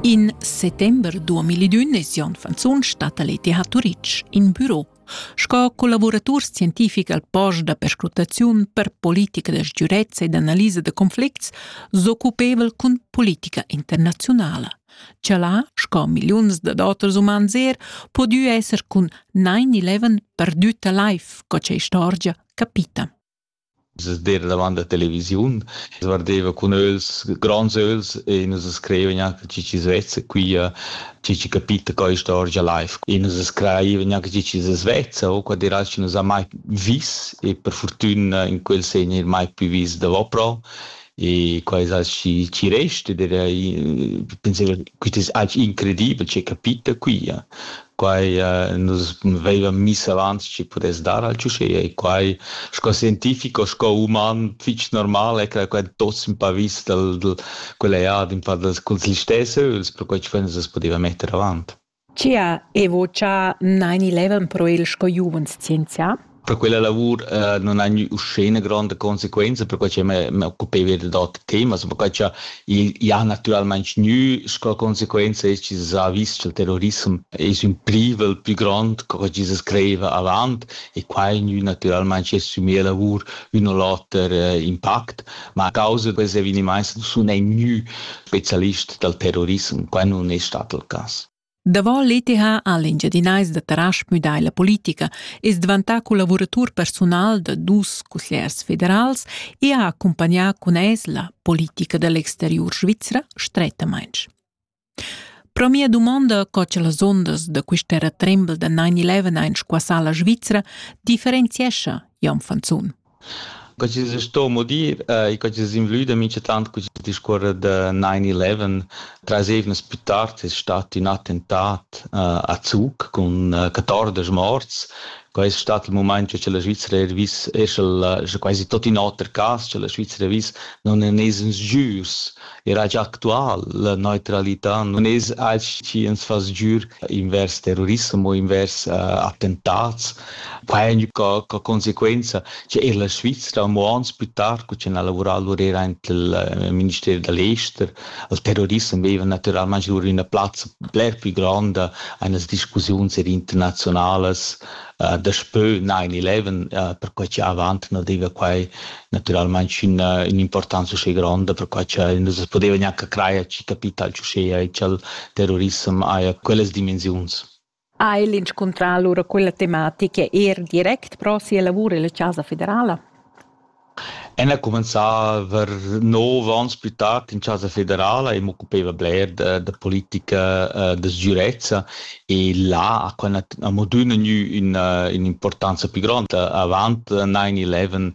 In settember 2001 es Jon Fanzun stat a l'ETH Turitg in büro sco collaboratur scientific al post da perscrutaziun per politica da sgürezza ed analisa da conflicts s'occupevel cun politica internaziunala. Cha là, sco milliuns da datas umans er, podieu esser cun 9-11 perdüta life, co cha istorgia capita. seder davant la televisiun, guardeva cun öls, gronds öls e nus scrivevan anche chi chi's vezza quia, chi chi capita quai istorgia live. E nus scrivevan anche chi chi svezza, o quad eral chi nus ha mai vis e per furtüna in quel segn eir mai pü vis davopro. e quai es aschi chi resta ed era penso quist es aschi incredibel che capita qui ja. Quai nus vaivan miss avant chi pudess dar al ciuchea e quai sco scientifico sco uman fich normal è che quai tuots ün pa vis dal dal quella ja d'ün pa dals culs listess öls perquai chi fo nus as pudeva metter avant. Chia Evo cha naini levan pro il sco giuvens scienzià? Per quella lavur uh, non ha uscene grande conseguenza, perché che me, me occupeva d'autri temi, perché che il ha naturalmente gnü sco conseguenza es che ha visto che il terrorismo es un privel più grande che che se creiva avant e qua è gnü naturalmente su mia lavur un o l'oter uh, impact, ma a causa di questi avvenimenti non è gnü specialist dal terrorissem. Quai nun es stat il cas. Davo l'ETH ha l'Engiadinais da Tarasch müdà la politica, es dvantà collavuratur persunal da dus cussiers federals e ha accumpagnà cun es la politica da l'exteriur svizra strettamaing. Pro mia dumonda co cha las ondas da quist'era trembel da 9-11 squassà la Svizra differenziescha Jan Fanzun. Co chi's sto mudir e co chi's invlüda minchatant cun quiст discuorrer da 9-11. Trais eivnas pü tard es stat ün attentat a Zug cun 14 morts. Quai es stat il mumaint che la Svizra eir vis, eir sch'el, scha quasi tot in oter cas, scha la Svizra vis, non en es ins jürs era gia actual. La neutralità non es alch chi ens fa sgür invers terrorissem o invers uh, attentats. Pain ca, ca conseguenza che er la Svizzera mo ans più tard, cu c'è lavorato lur era anche il eh, Ministero dell'Ester, il terrorissem aveva naturalmente lur una plazza bler più grande eine discussioni internazionales uh, daspö 9-11 uh, perquai cha avant na deva quai naturalmaing üna ün'importanza uschè gronda perquai cha nus as podeva gnanca crajer chi capital ch'uschea e cha'l terrorissem haja quellas dimensiuns. Ha el inscuntrà alura quella tematica er direct pro sia lavur illa Chasa federala? El ha cumenzà aver nov onns plü tard in chasa federala e m'occupaiva bler da da politica uh da sgürezza e là ha quai nat amo adüna gnü üna ün'importanza plü gronda. Avant nine eleven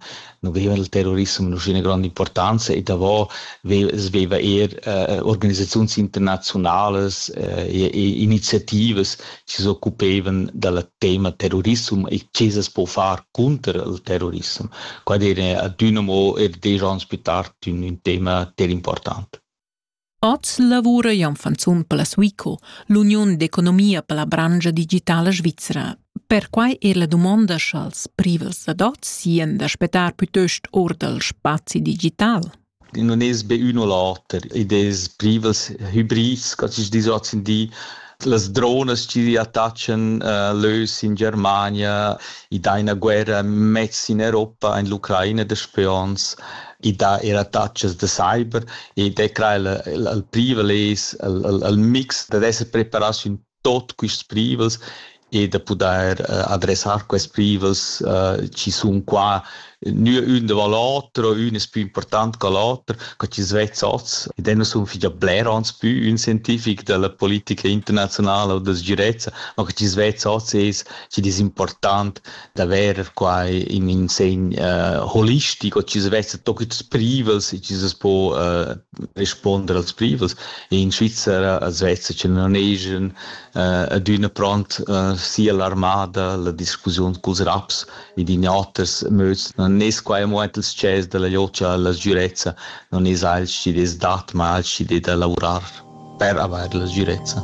nu veva il terrorissem üna gronda importanza e davo veva eir uh organisaziuns internaziunalas e e iniziativas chi s'occupevan dal tema terrorissum e che se po far cunter il terrorissem. Qua dire adüna mo er desch ans più tard ün, ün tema ter important. Oz lavura Jan Fanzun per la Suico, l'uniun d'economia per la brangia digitala svizra. Perquai er la dumonda sch'als privels ad oz sien da spettar plütöst or dal spazi digital. non es be ün o l'oter, id es privels hibrids, co chi's disch hoz in di, las dronas chi attaccan uh, l'ös in Germania, i dà üna guerra mez in Europa, in l'Ucraina da spions, i dà er attacks da cyber ed è crai il privel es il mix dad esser preparats ün tot quists privels e da pudair uh, adressar questi privels uh, ci sun qua nü ün da l'oter, ün es pü important che l'oter, che ci svezza oz. Ed eu sun figlia bler ans pü ün scientific della politica internazionale o da sgirezza, ma che ci svezza oz es ci es important d'avair qua in in segn uh, holistico, ci svezza tot quists privels e ci se po uh, responder als privels. In Svizzera svezza che non ejan eh, adüna pront eh, sia l'armada la discussiun culs raps ed in oters möds. Non es quai amo aint els chers della liocia alla sgürezza, non es alch chi des dat, ma alch chi de da lavurar. per avair la sgirezza.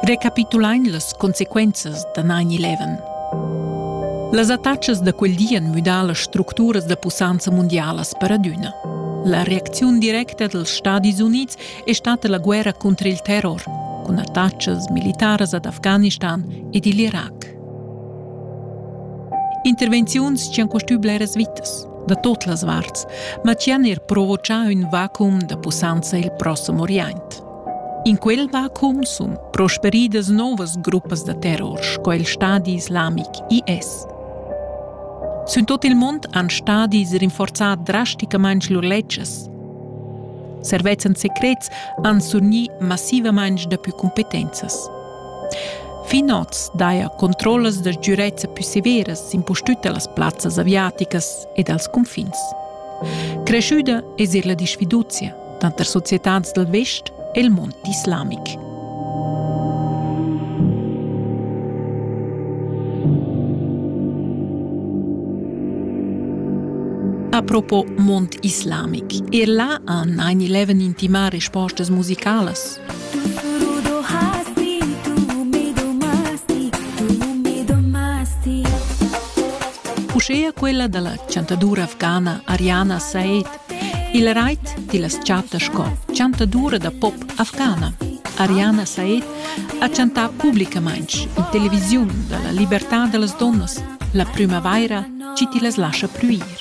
Recapitulain las consequenzas da 9-11. Las attachas da quel di han müdà las structuras da pussanza mundialas per adüna. La reacziun directa dals Stadis Unids è stata la guerra contro il terror, cun attachas militaras ad Afghanistan ed il Irac. Intervenziuns ch'han costü bleras vitas da tot las varts, ma chi han er provochà ün vacuum da pussanza i'l prossem Orient. In quel vacuum sun prosperidas novas gruppas da terror sco il Stadi islamic IS. Sün tot il mond han stadis rinforzà drasticamaing lur ledschas. Servezzan secrets han surgni massivamaing dapü cumpetenzas. Fin oz daja controllas da sgürezza pü severas impustüt da las plazzas aviaticas e dals cunfins. Creschüda es eir la disfiduzia tanter societats dal vest e il mond islamic. Apropos mond islamic, er là han 9-11 intimà respostas musicalas Uschea quella da la chantadura afghana Ariana Said il rait ti las chatta sco chantadura da pop afghana. Ariana Said ha chantà publicamain in televisiun da la libertà da las donnas. La primavaira ci ti las lascia pluir.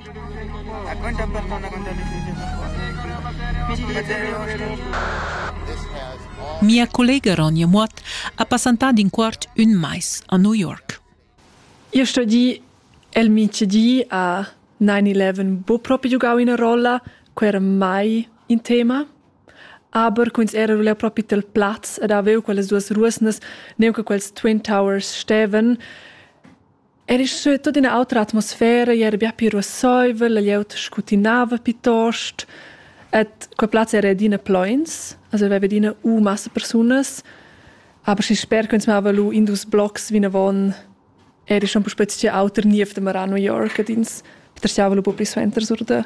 Dacuenta persona con Mia collega Ronja Muot ha passantà d'in quart ün mais a New York. Io sto di, el mice di a 9-11 bo proprio giocau ina rolla, quei era mai in tema. Aber quins era ruler proprio tel plaz ed avevo quellas duas ruosnas, neunche quels Twin Towers steven, Era sche tut ina autra atmosfera era bia pli ruasseivel la glieud scutinava piuttost ed quei plaz era adina pleins, also aveva adina u massa persunas, aber schi sper che ins mava lu in dus blocs vinavon era schon puspei tgei auter niev demorà a New York ed ins peterschiava lu buca pli suenter sur da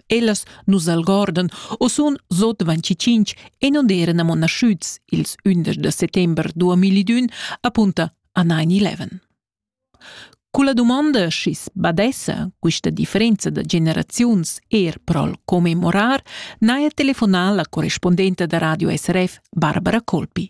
Ellas nus algordan u sun sot 25 e non eran amo naschüts ils 11 de settember 2000 apunta a 9-11. Culla domanda schi's badessa quista differenza da generaziuns er prol commemorar, n'haja telefonà la correspondenta da Radio SRF Barbara Colpi.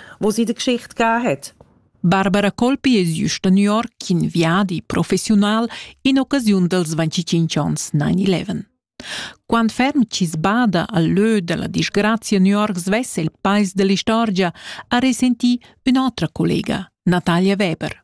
was i de Geschichte gar hat. Barbara Colpi es jüsta New York in viadi professional in occasiun dels 25 ans 9-11. Quant ferm chi sbada al lö della disgrazia New York svesse il pais dell'istorgia, ha resenti ün'otra collega, Natalia Weber.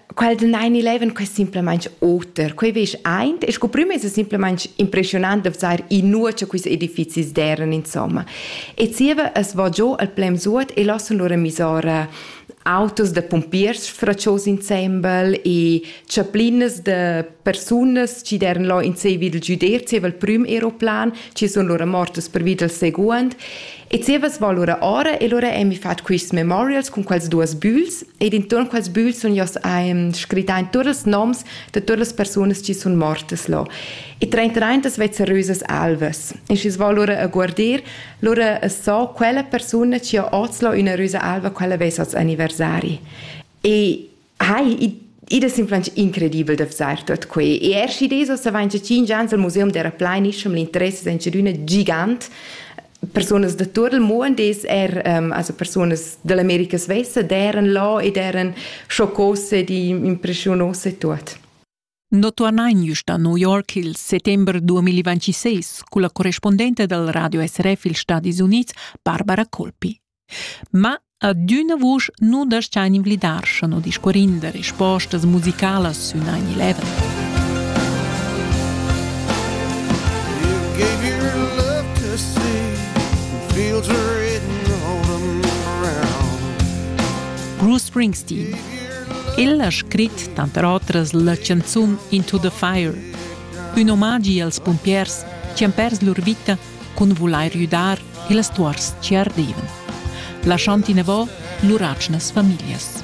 quel den 9-11 quei simplamain oter quei veš eint e sco prima es simpelmaing impressionant da vzar in nur cha quis edifizis deran insomma e zieva es vo giò al plem suot e lassen lura misora autos da pompiers fraccios insembel e chaplinas da persunas chi deran là in sei vid il giuder zieva il prüm aeroplan, chi sun lura mortas pervi dal seguond E zievas val ora ora e lura emi fat quists memorials cun quels duos bügls ed intuorn quels bügls sun io's ehm, scrittà in tuot ils noms da tuot las persunas chi sun mortas là. E trentaintas vezzerösas alvas. E schi's val lura a guardir, lura as so quella persuna chi ha hoz là üna rösa alva, quella vess hoz anniversari. E Hai, id es influenz incredibel da vzar tuot quai. E er schi des ossa vain 5 ans al museum d'era plainischer, l'interess es inchadüna gigant. Personas da tur il muond es er um, also personas dall'America svessa d'eran là ed eran schoccose di impressionosse tuot. Notornain just a New York il settember 2026 culla correspondente dal radio SRF ils Stadis Unids Barbara Colpi. Ma adüna vusch nu das-chain invlidar, scha no discuorin da respostas musicalas sün 9-11. Bruce Springsteen El ha scrit tanter otras la chanzun Into the Fire, ün omagi als pumpiers chi han pers lur vita cun vulair güdar ils tuors chi ardevan, lasciand inavò lur atgnas famiglias.